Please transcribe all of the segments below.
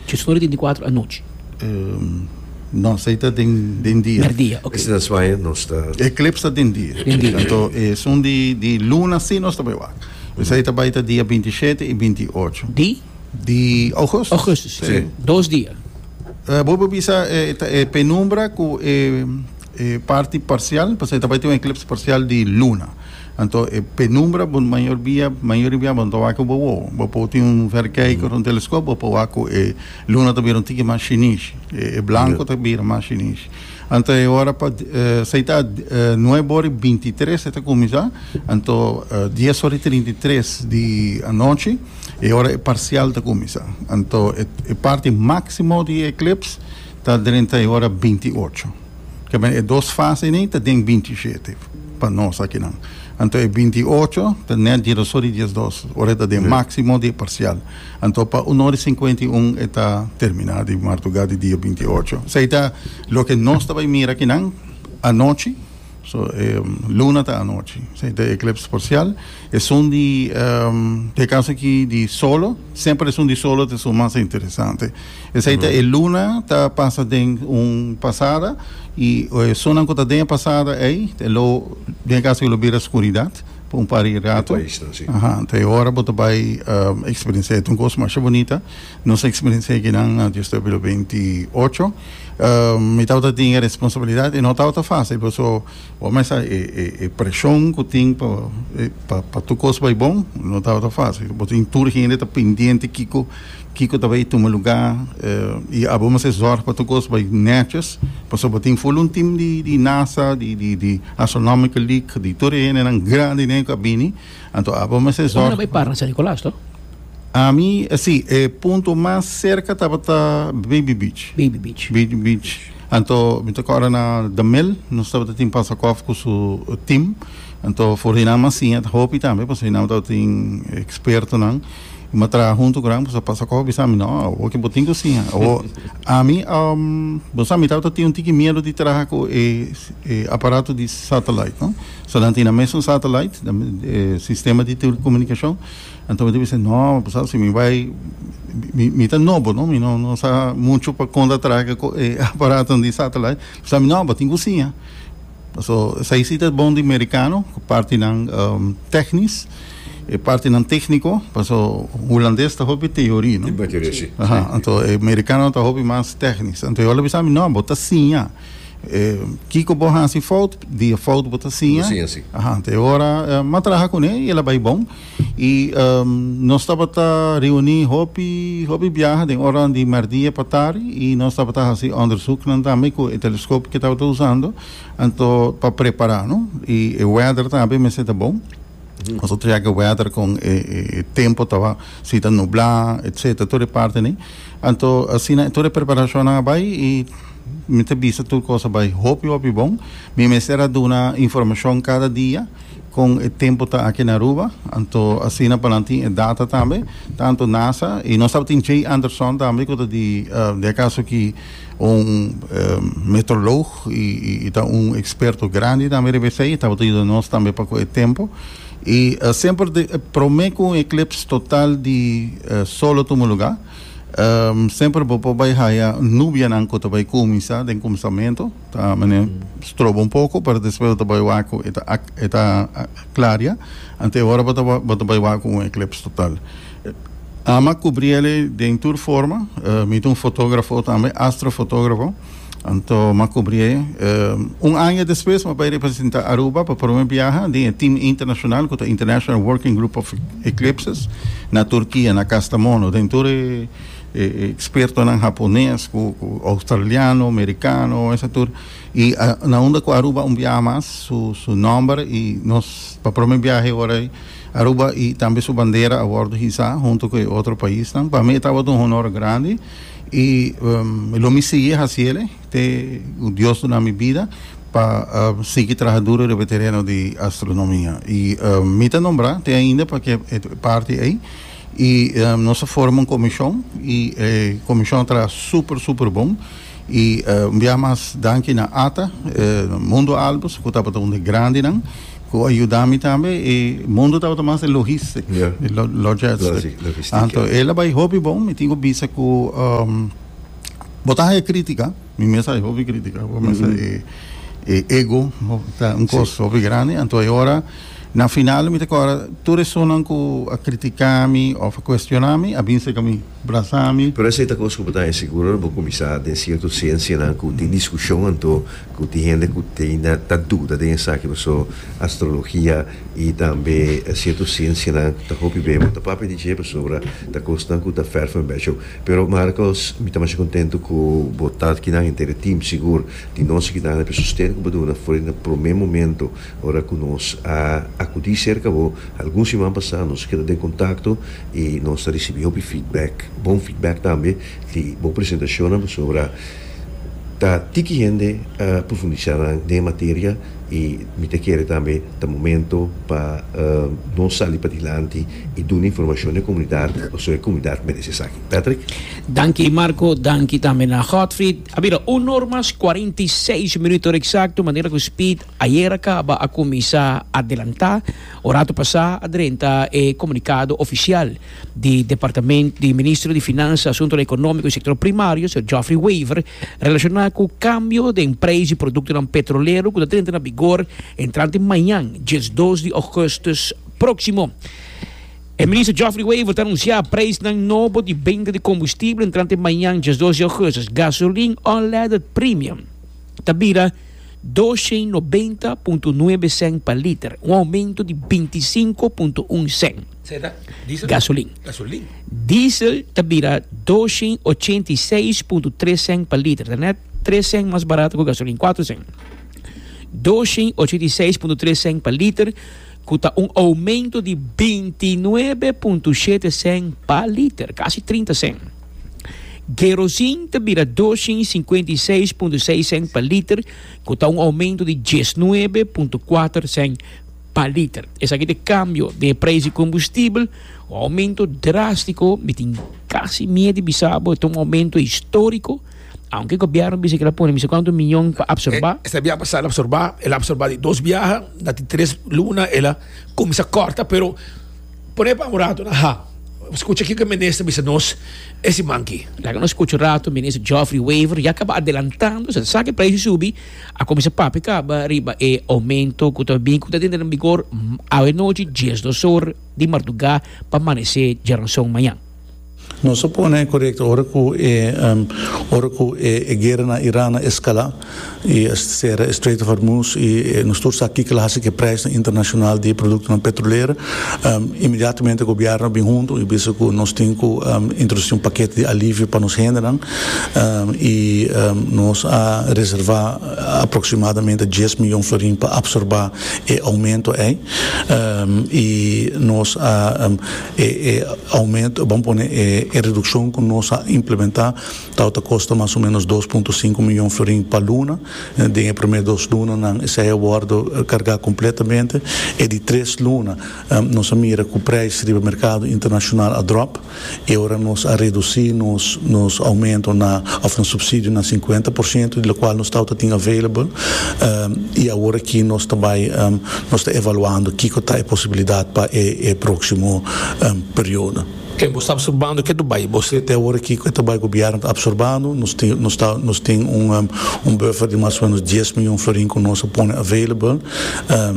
Dje sora tin di kuater anochi. No, esei ta den den dia. Den dia, ok. Ese ta suaña nos ta. Eklips ta den dia. Den dia. Tanto e sun di di luna si nos ta bai wak. Esei ta bai ta dia binti shete i binti ocho. Di? Di Augustus. Augustus. Si. Dos dia. Bo por bisa e ta e penumbra ku e. E parti parsial, pasobra e ta bai tin un eklipse parsial di luna. Anto e penumbra bo mayor bia, mayoria bia bo ta wak ku bo wowo. Bo por tin un verkijker, un teleskop, bo por wak ku e luna ta bira un tiki mas shinish. E e blanko ta bira mas shinish. Anto e ora pa sa e ta nuebe ora i binti tres e ta kuminsá, anto dies ora i trinta i tres di anochi e ora e parsial ta kuminsá. Anto e parti máksimo di e eklipse. Ta drenta e ora binti ocho. Kebien e dos fase ni ta den binti shete pa nos akinan. Anto e binti ocho ta net diedoso di diesdos, ora e ta den máksimo di e parsial. Anto pa un ora i sinkuenta i un e ta terminá di martugá di dia binti ocho. Esei ta loke nos ta bai mira akinan anochi. So e luna ta anochi. Sei ta eclips parcial. E sun di um, pe caso ki di solo, sempre e sun di solo te sun mas interesante. E sei ta e luna ta pasa den un pasada y e sunan ku ta den pasada ei te lo den caso ki lo bira oscuridad pa un par di rato. Aha, te ora bo ta bai um, experiencia e un kos masha bonita. Nos a experienci'é ki nan antes yo staba lo beinti ocho. Mi tabata tin e responsabilidad y no tabata fácil paso bo mester sa e presión cu tin pa tur cos bai bon, no tabata fácil. Bo tin tur hende ta pendiente kico kico ta bay tuma lugá y abo mester zorg pa tur cos bay netjes paso bo tin full un team di NASA, di Astronomical League, di tur e hendenan grandinan cu a bini. Anto abo mester Hopi zorg. no bay para na San Nicolas, to? Ami, eh, si, e punto mas cerca tabata Baby Beach. Baby Beach. Baby Beach. Anto, mi ta corda na The Mill, nos tabata tin Pansakov cu su eh, team. Anto, for di nan Masinha ta hopi tambe, pasobra di nan tabata tin expertonan. Mi ma traha hunto cu nan, pasobra Pansakov bisa mi, no, awo ke bo tin cu sinha. Awo, ami, um, bo sa, mi tabata tin un tiki miedo di traha cu e, e aparato di satellite, no. So nan tin nan mes un satellite, nan e sistema di telecomunicacion, anto mi ta bisa, no, pasal si mi bai, mi, mi ta nobo, no, mi no, no sa mucho pa con ta traha cu e aparaton di satellite, pasal mi no, bo tin cu siña. So esai si ta bon di mericano, cu partinan um, tecnis, e partinan tecnico, paso hulandes ta hopi teorie, no. Di bateria, si. Aha, anto e mericanonan ta hopi mas tecnis. Anto e ora ta bisa mi, no, bo ta siña. Kiko bo hasi fout, di e fout bo ta siña. Siña si. Aha, ta e ora m'a traha kuné i el a bai bon. I nos tabata reuní hopi, hopi biaha den oranan di mèrdia pa tardi i nos tabata hasi òndersùknan tambe ku e teleskopio ku e tabata usando anto pa prepará, no? I e wèder tambe mester ta bon. Nos a treke wèder kon e tempu ta wak, si ta nublá etcetera tur e parti ni. Anto asina tur e preparashonnan a bai i mi ta bisa tur kos a bai hopi hopi bon. Mi mester a duna informashon kada dia kon e tempu ta aki na Aruba. Anto asina pa nan tin e data tambe, tantu nasa i nos tabatin Jay Anderson tambe ku ta di dje kaso ki. Un meteorolog y y ta un experto grandi tambe riba esey y tabata yudanos tambe pa cu e tempo y uh, semper de eh, prome cu un eclips total di uh, sol lo tuma lugar um, semper bo por bay haya nubianan cu ta bay cuminsa den cuminsamento ta mene strobo un poco pero despues bo ta bay wak cu e ta ac- e ta uh, claria ante e ora bo ta wa- bo ta bay wak cu un eclips total Ama cubri ele den tur forma. Mi ta un fotografo tambe, astrofotografo. Anto ma cubri e. Un aña despues ma bay representa Aruba pa prome biaha den e team internacional cu ta International Working Group of Eclipses na Turkia, na Kastamono, den tur e expertonan Hapones cu Australiano, Mericano, esnan tur. Y na unda cu Aruba un biaha mas su nomber y nos pa prome biaha e ora ey. Aruba y tambe su bandera a wordo hisa hunto cu e otro paisnan. Pa mi e tabata un honor grandi y lo mi sigui haciele te cu Dios duna mi bida pa sigui traha duro riba e tereno di astronomia. Y mi ta nombra te ainda pa e parti ey. Y nos a forma un comision y e comision a traha super super bon y un biaha mas danki na Ata, Mundo Albus cu tabata un di grandinan cu a yuda mi tambe y Mundo tabata mas di logistic, di logistic, anto el a bay hopi bon, mi tin cu bisa cu bo ta haya critica, mi mes a haya hopi critica, bo mester e ego ta un cos hopi grandi, anto e ora. Na final mi ta kòrda tur esunnan ku a kritika mi òf a kuestioná mi a bin serka mi, brasá mi. Pero esei ta kos ku bo ta hasi sigur ora bo kuminsá den sierto siensianan ku tin diskushon anto ku tin hende ku ta ainda ta duda den esaki paso astrologia i tambe sierto siensianan ta hopi beu. Bo ta papia di dje pasobra ta kosnan ku ta fèr for un bèshou. Pero Marcos mi ta masha kontentu ku bo ta kinan henter e tim sigur di nos a kidande p'e sustento ku bo duna for di na promé momento Ora cu nos a acudi cerca bo algun siman pasá nos keda den contacto y nos ta ricibi hopi feedback, bon feedback tambe di bo presentacionnan pasobra ta tiki hende a profundisá nan den e materia y mi ta kere tambe ta momento pa nos sali padilanti y duna informacion na e comunidad pasobra e comunidad merece esaki. Patrick. Danki Marco, danki tambe na Godfried. A mira, un or mas cuarenta y seis minuto exacto manera cu Speed. Ayer a kaba a kuminsá adelantá ora atu pasá a drenta e komunikado ofisial di Departamento di Ministro di Finansa, Asuntonan Ekonómiko i Sektor Primario, señor Geoffrey Wever, relashoná ku kambio den preis di produktonan petrolero ku ta drenta na bigor entrante mañan, diesdos di ògùstùs próksimo. E Minister Geoffrey Wever ta anunsiá preisnan nobo di benta di kombustible entrante mañan, diesdos di ògùstùs, gasolin unleaded premium. ta bira doshe i nobenta punto nuebe sèn pa liter, un oumento di binti i sinku punto un sèn. Gasolin. Diesel ta bira doshe i ochenta i seis punto tres sèn pa liter, ta nèt tres sèn mas barato ku gasolin, kuater sèn. Doshe i ochenta i seis punto tres sèn pa liter, ku ta un oumento di binti i nuebe punto shete sèn pa liter, kasi trinta sèn. Kerosin ta bira doscientos y cincuenta y seis punto seis cent pa liter, ku ta un oumento di diesnuebe punto kuater cent pa liter. Esaki ta e kambio den e preis di kombustibel, un oumento drástiko. Mi tin kasi miet di bisa bo e ta un oumento históriko, aunke gobièrnu bisa ke el a pone mester kuantu miyon pa apsorbá. Esta biaha pasá el a apsorbá, el a apsorbá di dos biaha, na tin tres luna el a kuminsá kòrta, pero. Pone pa un rato na ha. Scucha kico e Minister bisa nos e siman aki. Laga nos scucha un rato Minister Geoffrey Wever ya caba adelantando sa esaki e precio subi a cuminsa papia caba riba e aumento cu ta bin cu ta denter den bigor awe nochi diesdos or di marduga pa manece djaranson mañan. Nos a pone correcto ora cu e ora cu e e guera na Iran a escala y a cera e Strait of Hormuz y nos tur sa kico lo haci cu e prijsnan internacional di e productonan petrolero. Inmediatamente e gobierno a bin hunto y bisa cu nos tin cu introduci un paquete di alivio pa nos hendenan y nos a reserva aproximadamente dies millon florin pa absorba e aumento ey y nos a E aumento, bon pone e redukshon ku nos a implementá tabata kosta mas o ménos dos punto sinku miyon florin pa luna. Den e promé dos lunanan esei a wòrdu kargá kompletamente. E di tres luna nos a mira ku preis riba merkado internashonal a dròp i ora nos a redusí nos nos aumento na òf nos supsidio na sinkuenta por shento di lokual nos tabata tin available i awor aki nos ta bai Nos ta evaluando kiko ta e posibilidat pa e próksimo periodo. Ke bo sta absorbando ke ta bai bo se. Te awor aki ku e ta bai gobièrnu ta absorbando, nos tin un buffer di mas o ménos dies mion florin ku nos a pone available.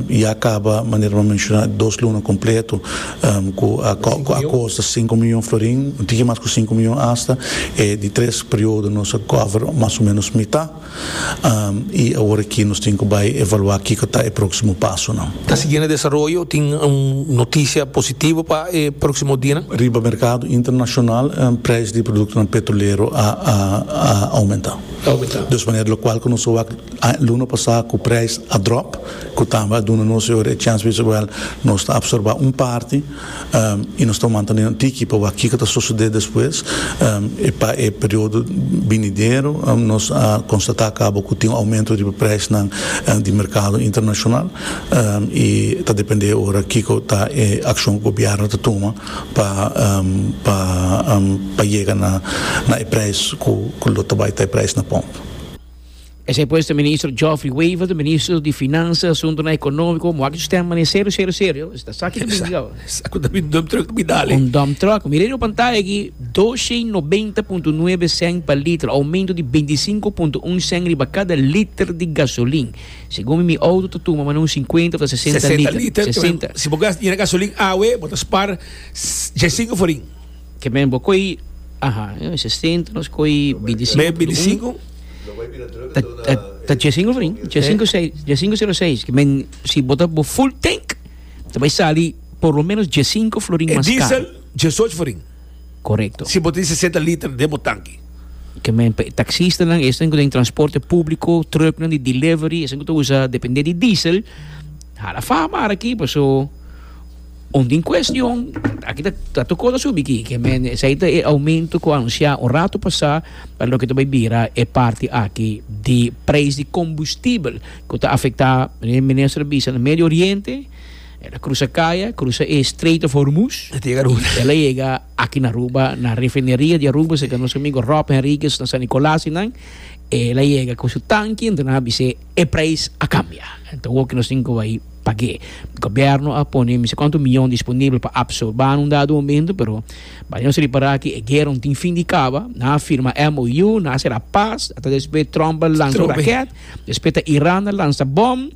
Ya kaba manera bo a menshoná dos luna kompleto ku akos ta sinku mion florin, un tiki mas ku sinku mion asta. E di tres periodo nos a cover mas o ménos mitá. y awor aki nos tin cu bay evalua kico ta e proximo pasonan. Ta sigui na desaroyo, tin un noticia positivo pa e proximo dianan. Riba mercado internacional prijs di productonan petrolero a aumenta. Dus manera locual cu nos a wak luna pasa cu prijs a drop, cu tambe a duna nos e chance bisawel nos ta absorba un parti. y nos ta wanta den nan tiki pa wak kico ta sosode despues y pa e periodo binidero nos a constata cabo cu tin un aumento riba prijsnan di mercado internacional y ta depende ora kico ta e accion cu gobierno ta tuma pa yega na e prijs cu lo ta bay ta e prijs na pump. Esei pues ta Minister Geoffrey Wever, Minister di Finansa, Asuntunan Ekonomiko, mo aki su stem mane serio, serio, serio. Esta sa aki ta bini awo. Sa ku ta bini dump truck ta bini dale. Un dump truck. Mira riba pantaya aki, dos e nobenta punto nuebe sèn pa liter, oumento di binti sinku punto un sèn riba kada liter di gasolin. Segun mi, mi outo ta tuma mane un sinkuenta òf ta sesenta liter. Sesenta liter. Sesenta. Si bo gasta dinero gasolin awe, bo ta spar djes sinku forin. Ke men bo koi, aha, e sesenta nos koi bintisinku punto un, ta ta ta djessinku fri, djessinku sei, djessinku sero seis, ke men si bo ta bo full tank ta bai sali por lo menos djessinku florin E mas karo. diesel djesoch florin Korekto. si bo tin sesenta liter den bo tanki. Ke men pa e taksistanan, esnan ku ta den transporte públiko, trùknan di delivery, esnan ku ta usa dependé di diesel, hala fama ara aki, paso. Un tin cuestion, aki ta toco ta subi ki, ke men esey ta e aumento cu anuncia un rato pasa pa loke ta bay bira e parti aki di prijs di combustibel cu ta afecta, e minister a bisa, na Medio Oriente, el a crusa caya, crusa e Strait of Hormuz, el a yega aki na Aruba, na refineria di Aruba, segun nos amigo Rob Henriquez na San Nicolas y nan, el a yega cu su tanki, entonces nan a bisa e. E prijs a kambia. Ta hopi nos tin ku bai pag'é. Gobièrnu a pone mi si kuantu mion disponibel pa apsorbá un dado momento, pero bai nos ripará ku e guera no tin fin di kaba. Nan a firma MOU, nan a sera pas, ata despues Trump a lansa un rakèt, despues ta Iran a lansa bòm,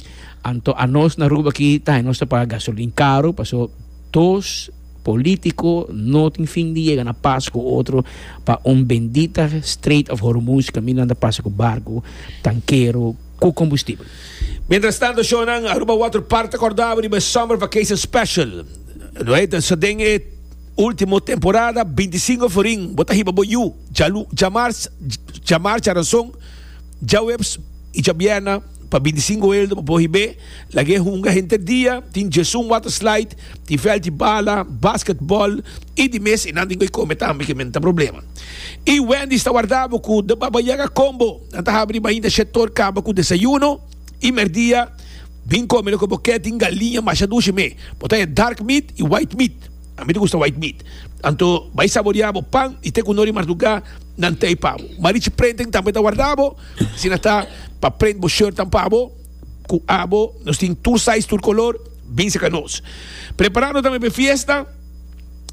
anto anos na Aruba aki ta haña nos ta paga gasolin karu, pasobra dos. Político no tin fin di yega na pas cu otro pa un bendita Strait of Hormuz caminda nan ta pasa cu barcu, tankero cu combustible. Mientras tanto shownan Aruba Water Park ta cordabo riba e Summer Vacation Special. No e ta sa den e ultimo temporada, bintisinco forin bo ta hiba bo yu, dja dja marcha, dja marcha aranson, dja webs y dja bierna. Pa bintisinko elda bo por hib'é lag'é hunga henter dia, tin Jesun Water Slide, tin vèlt di bala, baskètbòl i di mes i nan tin koe kome tambe ke men ta problema. I Wendy's ta wardá bo ku de Baba Yaga Combo, nan ta habri riba ainda shetor kaba ku desayuno i mèrdia, bin kome loke bo kè, tin galiña masha dushi me, bo ta e dark meat i white meat, a mi ta gusta white meat, anto bai saboriá bo pan i te ku no ri mardugá nan tei pa bo. Marichi Prenting tambe ta wardá bo. Asina ta, pa prent bo shirtnan pa bo, ku abo nos tin tur size, tur kolor, binse ka nos. Preparando tambe pa e fiesta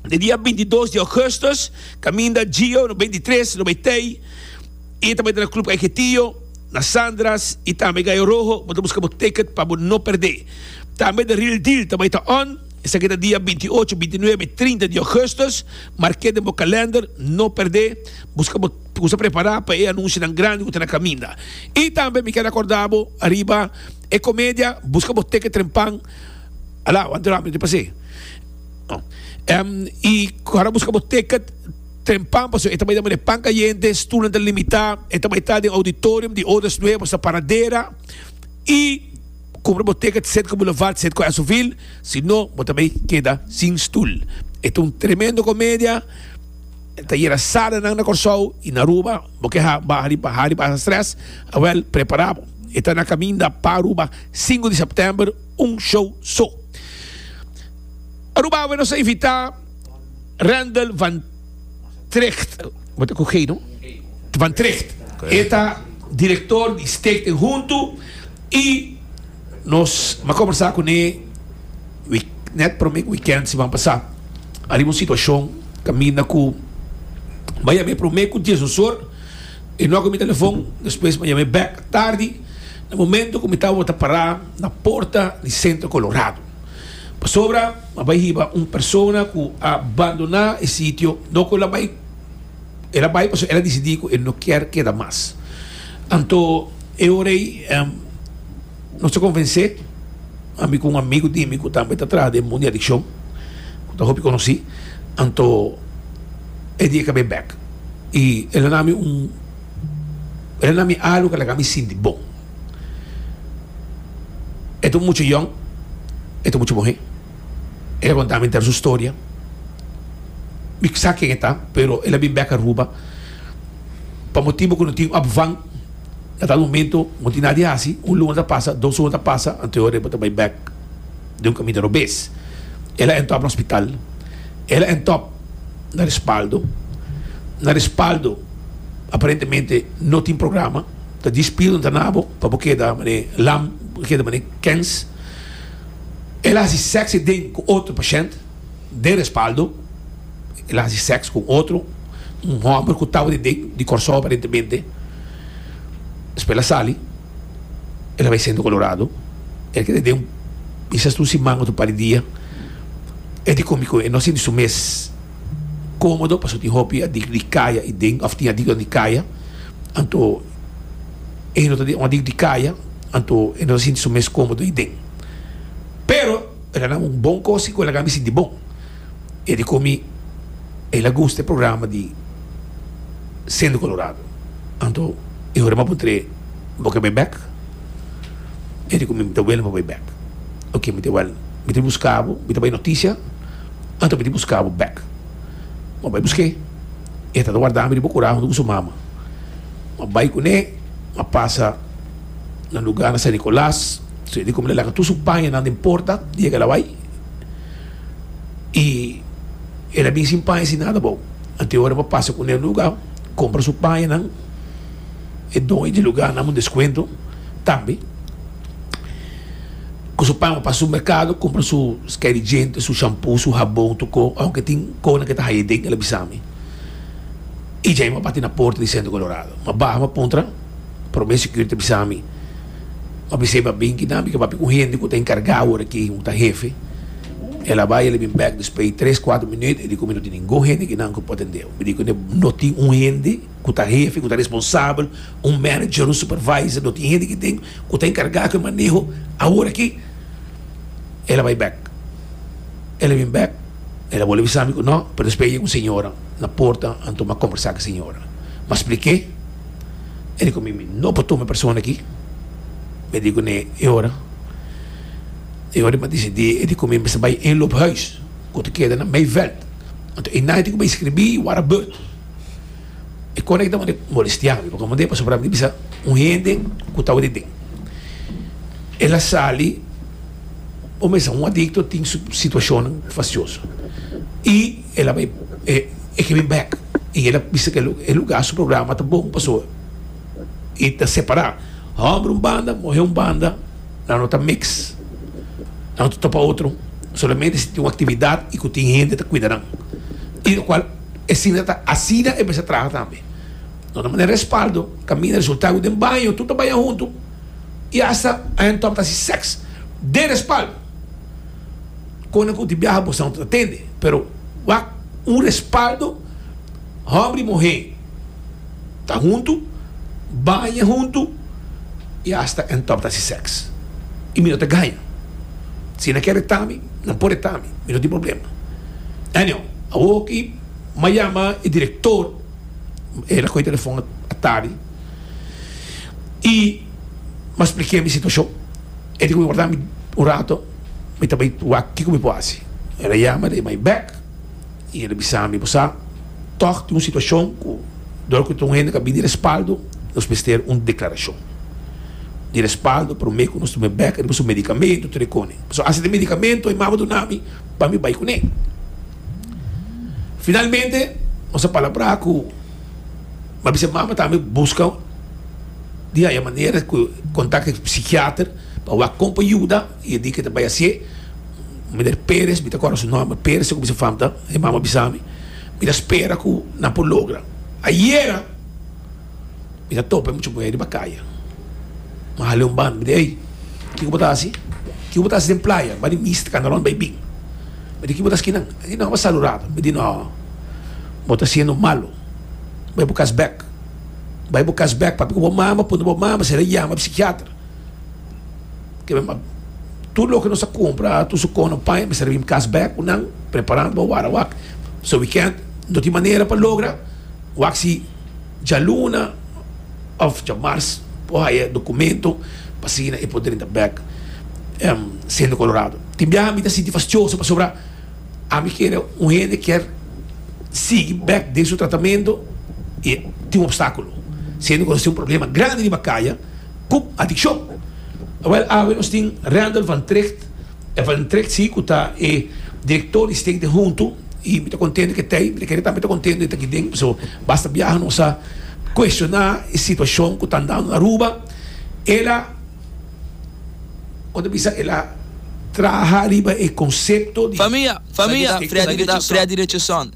den dia binti i dos di Augustus, kaminda Gio no binti i tres lo bai tei i e ta bai ta na Club Kaiketio na Sandra's i tambe Gallo Rojo, bo ta buska bo ticket pa bo no perdé. Tambe The Real Deal ta bai ta on, esaki ta dia binti i ocho, binti i nuebe i trinta di Augustus, mark'é den bo kalender, no perdé, buska bo. Tin ku sa prepará pa e anunsionan grandi ku ta na kaminda. I tambe mi ker akordá bo ariba e komedia Buska bo teke trempan, Ala, wan drama di pasé. I kòrda buska bo teke trempan pasobra e ta bai den manera pan kayente, stulnan ta limitá, e ta bai ta den auditorium di Odas Nuebos na Paradera. I kumpra bo teke sèt ku Boulevard, sèt ku Esoville, si no bo ta bai keda sin stul. E ta un tremendo komedia. Ta yera sada nan na Kòrsou i na Aruba. Bo ke ha baha riba ha riba esa strès? Awèl, prepará bo. E ta na kaminda pa Aruba sinku di sèptèmber, un show so. Aruba awe nos a invitá Rendel van Trecht, bo ta ku G no? Van Trecht. E ta direktor di Steek den Huntu i Nos a kombersá kuné wik nèt promé wikènt siman pasá ariba un situashon kaminda ku m'a yam'é promé ku dies osor. E nòk mi telefon, despues m'a yam'é bèk tardi na momentu ku mi tabata pará na porta di Centro Colorado. Pasobra m'a bai hiba un persona ku a bandoná e sitio, no ku el a bai. el a bai pasobra el a disidí ku e no kier keda mas. Anto e ora ei nos a konvensé, ami ku un amigu di mi ku tambe ta traha den mundo di adikshon, ku ta hopi konosí, anto e di e kab'é bèk i el a na mi un el a na mi alu ku a laga mi sinti bon. E ta un mucha yòn, e ta mucha muhé. E a konta mi henter su storia. Mi sa ken e ta, pero el a bin bek Aruba. Pa motibu ku no tin òp van, na tal momento no tin nada di hasi. Un luna ta pasa, dos luna ta pasa, anto e bo ta bai bek den un kaminda robes. El a èntòp na hospital, el a èntòp na respaldo. Na respaldo aparentemente no tin programa. Ta dispide un tanabo pa bo keda mane lam, bo keda mane kens. El a hasi sèks den ku otro pashènt den respaldo. El a hasi sèks ku un otro, un hòmber ku tabata den di Kòrsou aparentemente. Despues el a sali, el a bai Sentro Kolorado. El keda den un bisa asta un siman òf un par di dia. E di komo ku e no sinti su mes kómodo pasobra tin hopi aditu di kaya den òf tin aditu di kaya. Anto. e no ta den odi di kaya anto e no ta sinti su mes komodo ayi den pero e ta na un bon kos si ku el a kami sinti bon e di komi el a gusta e programa di siendo colorado anto e ora mi a pon trae bo ke bai bek e di komi mi ta wele pa bai bek oke mi ta wèl mi ta buska bo mi ta bai notisia anto mi ta buska bo bek mi a bai busk'e. E ta ta warda mi riba un kura huntu ku su mama. Mi a bai kuné, mi a pasa na lugá na San Nikolas. So e di ku mi a laga tur su pañanan den porta di e kalawai. I el a bin sin paña, sin nada abou. Anto e ora mi a pasa kuné un lugá kompra su pañanan, e don e di lugá a nam un deskuento tambe. cu su pama pa su mercado cumpra su sky di djente su shampoo su habon tu co aunke tin cona ke ta haya den el a bisami y djai ma bati na porta di centro colorado ma baha ma puntra prome security a bisami ma bisai ba bin ki nan mi ke papia cu hende cu ta encarga awor aki cu ta hefe el a bai el a bin back despues di tres cuatro minut el dico mi no tin ningun hende aki nan cu por atendeo mi dico no tin un hende ku ta hefi, ku ta responsabel, un manager, un supervisor, lo tin hende ki tin ku ta enkargá ku e maneho, awor aki el a bai bèk, el a bin bèk, el a bole bisa mi ku nò, pero despues yega un señora na porta a tuma kombersá ku e señora, m'a splik'é, e di ku mi, mi no por tuma e persona aki, mi di kuné e ora, e ora m'a desidí, e di ku mi, mester bai Inloophuis ku ta keda na Meiveldt, anto ei nadie tin ku bai skribí wara bùrt. E kos ei tabata molestia mi, pasobra mi tabata bisa un hende ku tabata den, el a sali por mester un adikto tin su situashonnan fasioso i el a bai e ke bin bèk i el a bisa ku e lugá, su programa ta bon pasobra e ta separá hòmber un banda, muhé un banda, nan no ta miks, nan no ta topa otro, solamente si tin un aktividat i ku tin hende ta kuida nan i lokual. E sina ta, asina e mester traha tambe. Nos ta manda respaldo, caminda resultado den baño, tur ta baña hunto y hasta Ian Tom ta haci sex den respaldo. Conde cu tin biaha bo santo ta tende, pero wak un respaldo homber y muher. Ta huntu, baña huntu i asta e ntòp ta hasi sèks. I mi no ta gaña. Si nan kere ta mi, nan por e ta mi. Mi no tin problema. Anyhow, awor aki mi a yama e direktor, el a koge e telefòn atardi i mi a spliká mi situashon. E di ku mi wòrda mi un rato, mi ta bai wak kiko mi por hasi. El a yama, el a yama mi bèk. I e ta bisa mi, Bo sa, tòg tin un situashon ku dor ku ta un hende ku a bini respaldo, nos mester un deklarashon di respaldo promé ku nos ta pone bèk riba su medikamentu, tur e kone. Pasobra asina medikamentu e mama duna mi pa mi bai kuné. Finalmente nos a palabrá ku mi a bisa e mama tambe buska di haya manera ku kontak e psikiater pa wak kon pa yuda. I e di ke ta bai hasié, Miner Pérez, mi ta kòrda su nòmber, Pérez segun mi sa famta, e mama bisa mi, mi ta spera ku nan por logra. Ayera mi ta topa e mucha muhé riba kaya, mi hala e un banda, mi di, Ey, kiko bo ta hasi? Kiko bo ta hasi den playa? Ba di misa, ta kanta rònt, bai bin. Mi di, Kiko bo ta hasi kinan? E di, Nò, bai salu ratu. Mi di, Nò, bo ta siendo malu. Bai bo kas bèk. Bai bo kas bèk, papia ku bo mama, punta bo mama si el a yama psikiater. Kebe map. Tur loke nos a kumpra tur su kono paña mester bin kas bèk ku nan preparando pa wara wak. So wi kèn no tin manera pa logra wak si djaluna òf djamars por haya dokumento pa asina e por drenta bèk em siendo kolorado. Tin biaha mi ta sinti fastioso pasobra ami kere un hende kier sigui bèk den su tratamento i tin un opstákulo siendo ku nos tin un problema grandi riba kaya. ku adikshon. Wèl awe nos tin Randall van Tricht. E van Tricht si ku ta e direktor di Stay den Huntu i mi ta kontento ku e ta ei. Mi ta kere tambe ta kontento e ta aki den pasobra basta biaha nos a kuestioná e situashon ku ta andando na Aruba. El a kon ta bisa el a traha riba e konsepto di. Famia! Famia! Freddy di ta Freddy Richardson.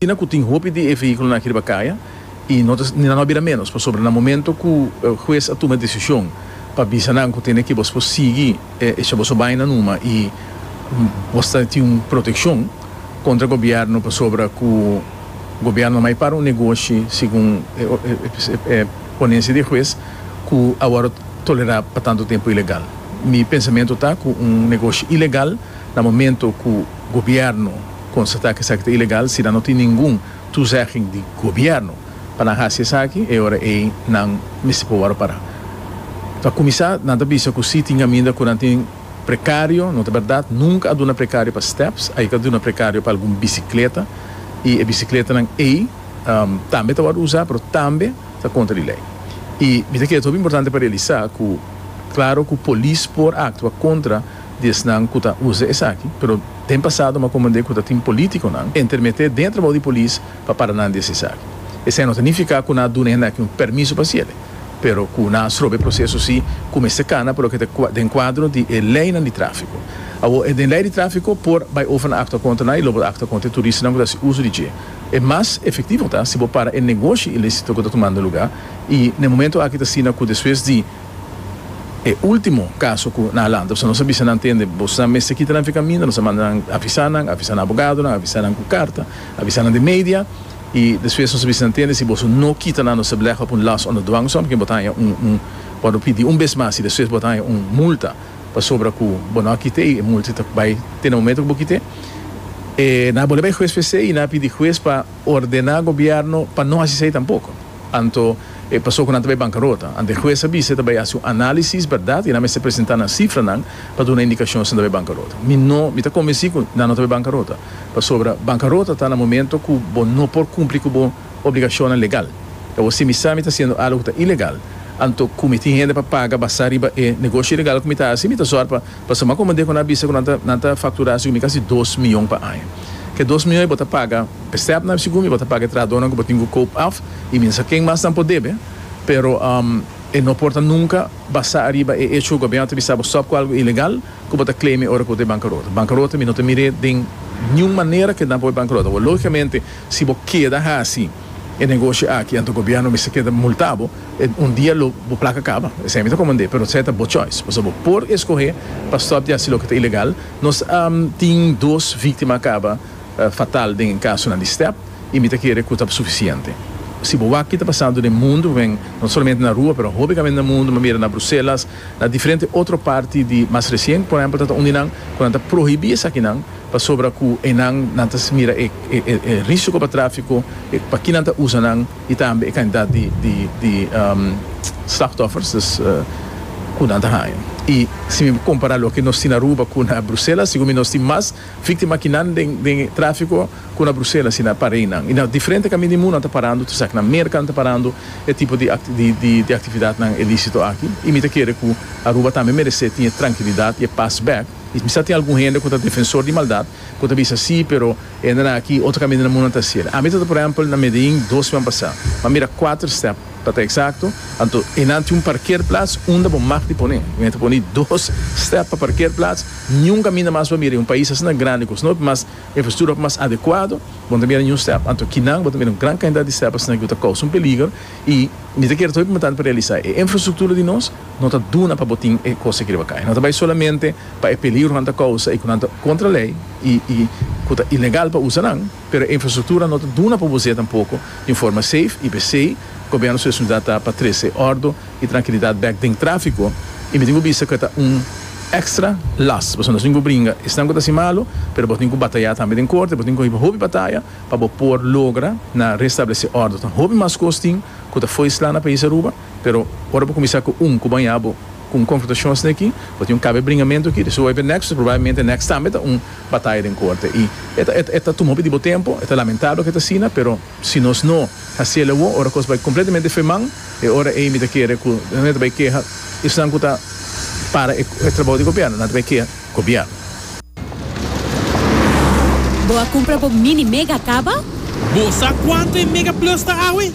Asina ku tin hopi di e vehíkulonan aki riba kaya i no ta ni nan no a bira ménos pasobra na momentu ku hues a tuma e desishon pa bisa nan ku tene ku bos por sigui echa boso baina numa i bos ta tin un protekshon kontra gobièrnu pasobra ku gobièrnu a mai para un negoshi segun e ponensia di e hues ku awor tolerá pa tantu tempu ilegal. Mi pensamentu ta ku un negoshi ilegal na momentu ku gobièrnu Konstatá ku esaki ta ilegal si nan no tin ningun tuzegging di gobièrnu pa nan hasi esaki, e ora ei nan mester por wòrdu pará. Pa kuminsá, nan ta bisa ku si tin kaminda ku nan tin prekario, no ta bèrdat, nunka a duna prekario pa stèps, a yega duna prekario pa algun bisikleta, i e bisikletenan ei tambe ta wòrdu usá, pero tambe ta kontra di lei. I mi ta kere ta hopi importante pa realisá ku klaro ku polis por aktua kontra di esnan cu ta uza esaki, pero den pasado mi a comprende cu ta tin politiconan entermete dentro bou di polis pa para nan di hasi esaki. Esei no ta nifica cu nan a duna e hende aki un permiso pa haciele, pero cu nan a strobe e proceso si cu mester cana pa loke ta den cuadro di e leynan di trafico. Awor, e den ley di trafico por bay over na actua contra nan y lo por actua contra e turistanan cu ta haci uzo di dje. E mas efectivo ta si bo para e negoshi ilicito cu ta tumando lugar y na e momento aki ta asina cu despues di E ultimo caso cu nan a lanta, pasobra nos a bisa nan tende, Bo sa mester kita nan fica minder, nos a manda nan avisa nan, avisa nan abogadonan, avisa nan cu carta, avisa nan den media, y despues nos a bisa nan tende, si boso no kita nan nos a belegha op un last under dwangsom, porque bo ta haya un un bo lo pidi un bes mas y despues bo ta haya un multa pasobra cu bo no a kite y e multa ta bay te na momento cu bo kite, e nan a bolbe bay huez p'esey y nan a pidi huez pa ordena gobierno pa no haci esey tampoco. Anto e paso cu nan ta bay bancarota. Ante e hues a bisa e ta bay haci un analisis, berdad, y nan mester presenta nan cifranan pa duna indicacion si nan ta bay bancarota. Mi no, mi ta convenci cu nan no ta bay bancarota, pasobra bancarota ta na momento cu bo no por cumpli cu bo obligacionnan legal. Awor, si mi sa mi ta haciendo algo cu ta ilegal, anto cu mi tin hende pa paga basa riba e negoshi ilegal cu mi ta haci, mi ta zor pa pasa mas comodé cu nan a bisa cu nan ta, nan ta factura haci cu mi casi dos miyon pa aña. Cu e dos miyon e bo ta paga. Stepnan sigur mi bo ta paga e trahadornan ku bo tin ku koop af i minsa ken mas nan por debe, pero e no por ta nunka basá ariba e echo ku gobièrnu ta bisa bo stòp ku algu ilegal ku bo ta kleme ora ku bo ta e bankarota. Bankarota mi no ta mir'é den niun manera keda por e bankarota bo. Lógikamente si bo keda hasi e negoshi aki anto gobièrnu mester keda multá bo, un dia lo bo plaka kaba, esei mi ta komand'é, pero esei ta bo choice, pasobra bo por eskohé pa stòp di hasi loke ta ilegal. Nos tin dos víktima kaba. fatal den e kasonan di step y mi ta kere cu ta suficiente. Si bo wak ki ta pasando den mundo, wen no solamente na rua pero hopi kamen den mundo, manera na Bruselas, na diferente otro parti di mas recien por ehempel ta ta uni nan cu nan ta prohibi esakinan pasobra cu enan nan ta mira e e risico pa trafico, e pa ki nan ta usa nan y tambe e cantidad di di di slachtoffers dus cu nan ta haya. Y si mi compara loke nos tin Aruba cu na Bruselas sigur mi nos tin mas. Víktima aki nan den den e tráfiko ku na Bruselas i na Pareinan i na diferente kami di mundu nan ta parando tur esaki na Merka nan ta parando e tipo di di di aktividatnan ilísito aki i mi ta kere ku Aruba tambe meresé tin e trankilidat i e pas bèk i mi sa tin algun hende ku ta defensor di maldat ku ta bisa sí pero e hendenan aki otro kaminan di mundu nan ta hasiel ami ta ta por ehèmpel na Medellín dos siman pasá mi a mira kuater stèp Pa ta eksakto, anto e nan tin un parkerplats unda bo mag di pone. Mi a ta pone dos stèp pa parkerplats. Niun kaminda mas bo a mira den un pais asina grandi ku snop mas infrastruktura ku mas adekuado, bo no ta mira niun stèp. Anto kinan bo ta mira un gran kantidat di stèp asina ku ta kousa un peliger. I mi ta kere ta hopi importante pa realisá e infrastruktura di nos no ta duna pa bo tin e kos aki riba kai. No ta bai solamente pa e peligro ku nan ta kousa i ku nan ta kontra lei i ku ta ilegal pa usa nan. Pero e infrastruktura no ta duna pa bo zeta poko di un forma seif i p'esei gobièrnu su responsabilidat ta pa trese òrdu i trankilidat bèk den tráfiko i mi tin ku bista ku e ta un èkstra las pasobra nos tin ku bringa esnan ku ta hasi malu pero bo tin ku batayá tambe den korte bo tin ku hiba hopi bataya pa bo por logra na restablesé òrdu ta hopi mas kos tin ku ta fo'i slá na País Aruba. Pero ora bo kuminsá ku un ku bañá bo ku un konfrontashon asina aki, bo tin un kaba e bringamentu aki, di su wòrdu e nèkso, probablemente e nèkso tambe ta un bataya den korte. I e ta tuma un poco di bo tempu, e ta lamentabel ku e ta asina, pero si nos no hasi el awor, ora kos bai kompletamente fe man, e ora ei mi ta kere ku nan e ta bai keha esnan ku ta para e trabou di gobièrnu, nan ta bai keha. Gobièrnu. Bo a kumpra bo Mini Mega kaba? Bo sa kuantu e Mega Plus ta awe?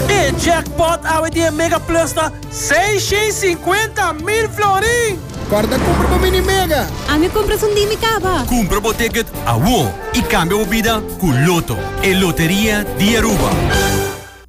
E jackpot awe di e Mega Plus ta seishens sinkuenta mil florin! Kòrda kumpra bo Mini Mega! Ami kumpra esun di mi kaba! Kumpra bo ticket awor i kambia bo bida ku Loto, e loteria di Aruba!